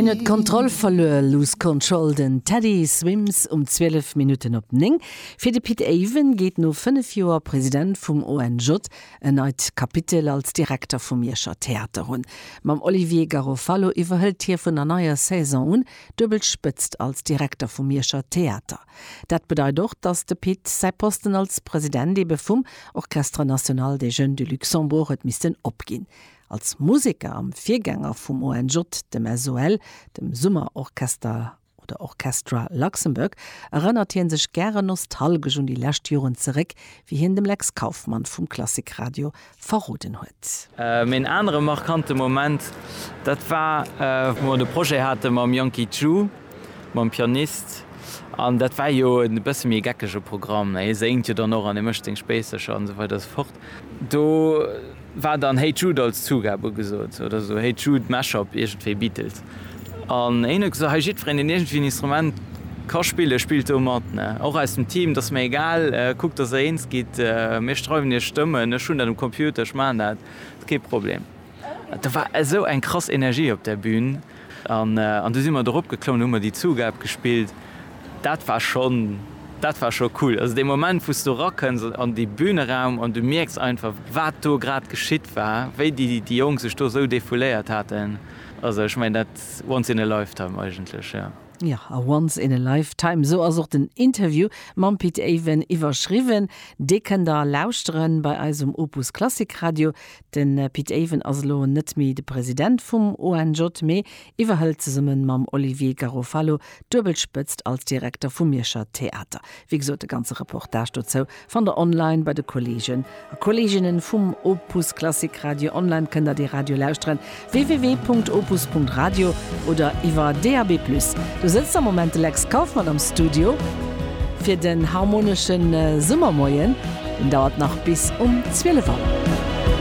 Hien huet d'Kontroll verluer, Lose Control, den Teddy Swims um 12 Minutten op 9. Fir de Pit Avon geet no 5 Joer President vum ONJ en neit Kapitel als Direkter vum Mierscher Theater un. Mam Olivier Garofalo iwwerhëlt hie vun der neier Saison un d'duebel Spëtzt als Direkter vum Mierscher Theater. Dat bedeit och, datt de Pit säi Posten als President ebe vum Orchestre National des Jeunes du Luxembourg huet missten opginn. Als Museker am Virgänger vum ONJ, dem SOL, dem Summer Orchester oder Orchestra Luxembourg, erënnert hie sech gären nostalgesch un déi lescht Joren zeréck, wéi hien dem Lex Kauffmann vum Klassik Radio verroden huet. Mee en anere markante Moment, dat war, wou mer de Projet hate mam Yankee Ju, mam Pianist. An dat war jo e bësse méi e geckege Programm, hie séngt jo dann och an hie mécht seng Spéissercher an esou weider esou fort. Do war dann Hey Jude als Zugab ugesot, oder esou Hey Jude Mashup, iergendwéi Beatles. An hien huet gesot, hei jiddwereen, deen iergendwéi en Instrument ka spillen, spillt do mat. Ne, och aus dem Team, 't ass mir egal, kuckt, dass der eens gitt, mir schreiwen iech Stëmmen, ech hunn dat um Computer, ech maachen dat, kee Problem. Do war esou eng krass Energie op där Bühn. An du si mer dorop geklomm, du hu mer déi Zugab gespillt, dat war schonn, dat war scho cool. Also dee Moment, wou s du erakënns an dee Büneraum an du mierks einfach, wat do grad geschitt war, wéi déi Jonk sech do esou defouléiert haten. Also ech mengen, dat once in a lifetime eigentlech, jo. Jo, a once in a lifetime, esou ass och den Interview mam Pit Aven iwwerschriwwen. Dee kënnt der lauschteren bei eis um Opus Klassik Radio. De Pit Avon ass elo net méi de President vum ONJ, mee iwwerhëlt zesumme mam Olivier Garofalo d'Duebelspëtzt als Direkter vum Mierscher Theater. Wéi gesot, de ganze Reportage dozou fannt der online bei de Kolleegen a Kolleeginnen vum Opus Klassik Radio. Online kënnt der dee Radio lauschteren, www.opus.radio oder iwwer DAB+. Do sëtzt am Moment de Lex Kauffmann am Studio fir den harmonesche Summermoien. Deen dauert nach bis um 12 Auer.